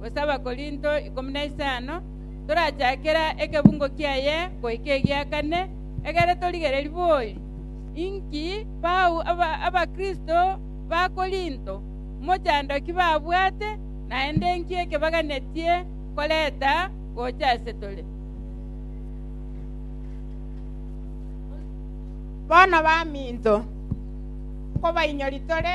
gose Abakorinto ikomi na isano, torachakera ekebungo kiaye goika egia kane, egere torigererie bori. Inki bau Abakristo ba Korinto mochandoki babwate, naende inki ekebaganetie koreta gocha ase tore? Bono baminto, nkobainyoria tore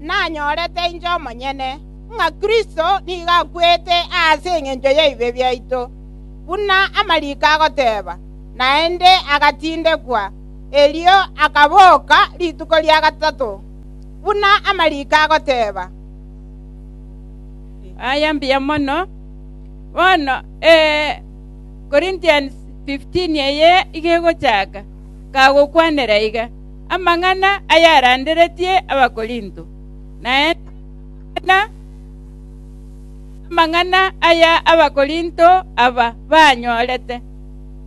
nanyorete inche omonyene, ng'a Kristo nigo akwete aase engencho y'ebibe biaito, buna amariko agoteeba, naende agatindekwa, erio akaboka rituko ria gatato, buna amariko agoteeba. Aya mbuya mono. Bono Corinthians 15 eye igo egochaka, kagokwanera iga. amang'ana ayaranderetie Abakorinto, naende amang'ana, amang'ana aya Abakorinto aba banyorete,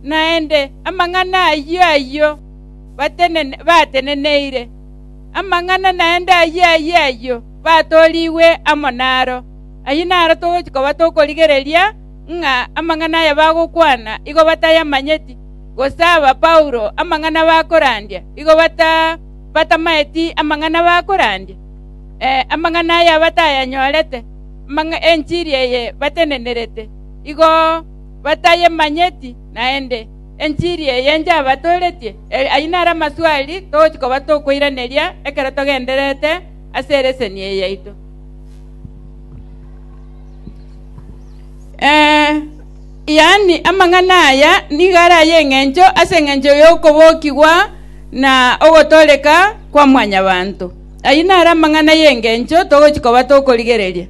naende amang'ana ayio ayio batenene, bateneneire, amang'ana naende ayio ayio ayio batorigwe amo naro. Ayio naro togochi koba tokorigereria ng'a amang'ana aya bagokwana igo batayamanyeti, gose aba Paulo amang'ana bakorandia igo batamaeti amang'ana bakorandia, amang'ana aya batayanyorete, enchiri eye batenenerete igo batayemanyeti naende, enchiri eye njabatoretie. Ayio naro amaswali togochia koba tokoiraneria ekero togendererete ase eleseni eye yaito. Ee, yaani amang'ana aya nigo are ay'engencho ase engencho y'okobokigwa na ogotooreka kwa mwanyabanto. Ayio naro amang'ana y'engencho togochia koba tokorigereria.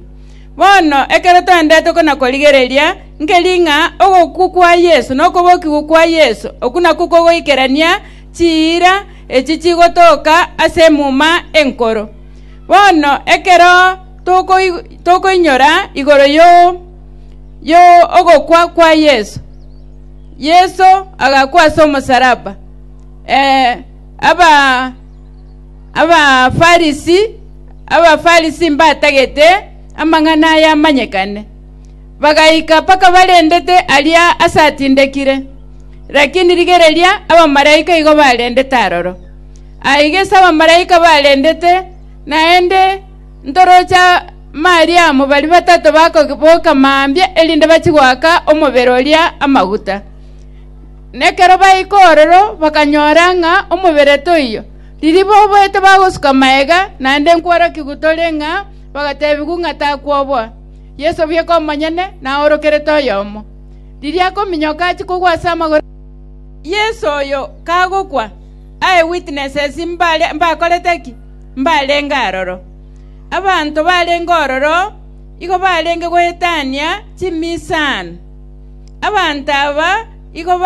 Bono ekero toendete kona-korigereria, nkeri ng'a ogokwa kwa Yeso na okobokigwa kwa Yeso okwo nakwo kogoikerania chiira echi chigotoka ase Emuma Enkoro. Bono ekero tokoinyora igoro y'ogokwa kwa Yeso, Yeso agakwa ase omosalaba, ee, Abafarisi Abafarisi mbatagete amang'ana aya amanyekane, bagaika mpaka barendete aria asatindekire. Lakini rigereria, abamalaika igo barendete aroro. Aye gese abamalaika barendete naende. Ntoroche Mariamu baria batato bakoboka mambia erinde bachie goaka omobere oria amaguta. Na ekero baika ororo bakanyora ng'a omobere toiyo. Riria boboete bagosuka maega, naende nkworokigwa gotore ng'a bagatebigwa ng'a takwoboa. Yeso bweka omonyene naorokerete oyomo. Riria akominyoka achie kogwa ase amagoro a Yeso oyo kagokwa, Eye witnesses mbakorete ki? mbarenge aroro. Abanto barenge ororo igo barenge goetania chimisaano. Abanto aba igo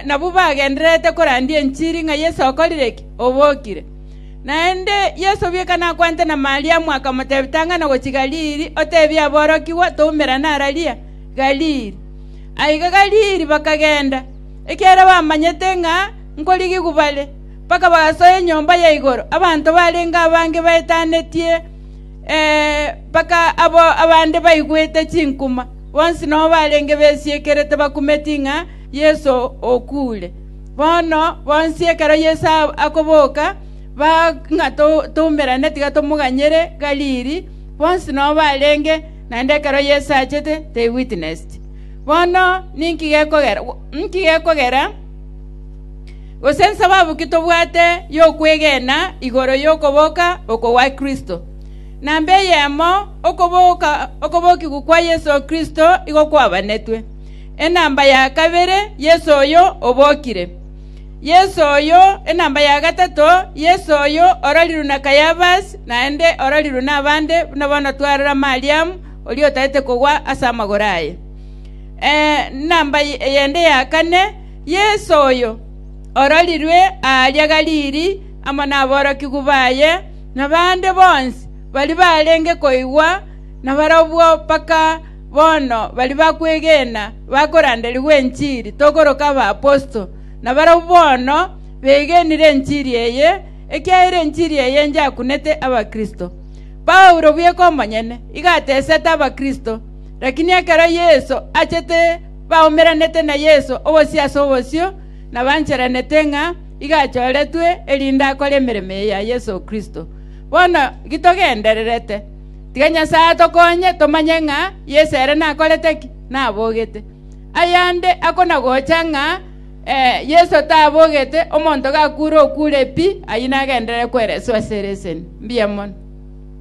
nabwo bagendererete korandia enchiri ng'a Yeso okorire ki? Obokire. Naende Yeso bieka nakwanete na Mariamu, akamotebia, Tang'ana gochia Galili, otebie aborokigwa toumerane araria Galili. Aiga Galili bakagenda, ekiagera bamanyete ng'a nkorigigwa bare. mpaka bagasoa enyomba ya igoro. Abanto barenge abange baetanetie, ee, mpaka abwo abande baigwete chinkuma. Bonsi nobo barenge besiekerete bakumeti ng'a Yeso okuure. Bono bonsi ekero Yeso akoboka, baa ng'a toumerane, tiga tomoganyere Galili. Bonsi nobo barenge, naende ekero Yeso achete they witnessed. Bono ninki gekogera? gose ensababu ki tobwate y'okwegena igoro y'okoboka oko gwa Kristo? Namba eyemo, okoboka okobokigwa kwa Yeso Kristo igo kwabanetwe. Enamba ya kabere, Yeso oyo obokire. Yeso oyo, enamba ya gatato, Yeso oyo ororirwe na Kayafas, naende ororirwe nabande, buna bono twarora Mariamu, oria otaete kogwa ase amagoro aye. Ee, enamba yende ya kane, “Yeso oyo, ororirwe aaria Galili amo naborokigwa baye, na bande bonsi baria barenge koigwa na barabwo mpaka bono baria bakwegena bakoranderigwa enchiri, tokoroka abaposito, na barabwo bono begenire enchiri eye, ekiagera enchiri eye nyakunete abakristo. Paulo bweka omonyene igatesete abakristo, rakini ekero Yeso achete, baumeranete na Yeso obosio ase obosio, na bancherenete ng'a iga achoretwe erinde akore emeremo eye ya Yeso Kristo. Bono gitogendererete, tiga Nyasae atokonye tomanye ng'a Yeso ere nakorete ki? Nabogete. Ayande akonagocha ng'a ee, Yeso tabogete, omonto gakure okure pi, ayio nagenderere kwereswa ase ereseni. Mbuya mono.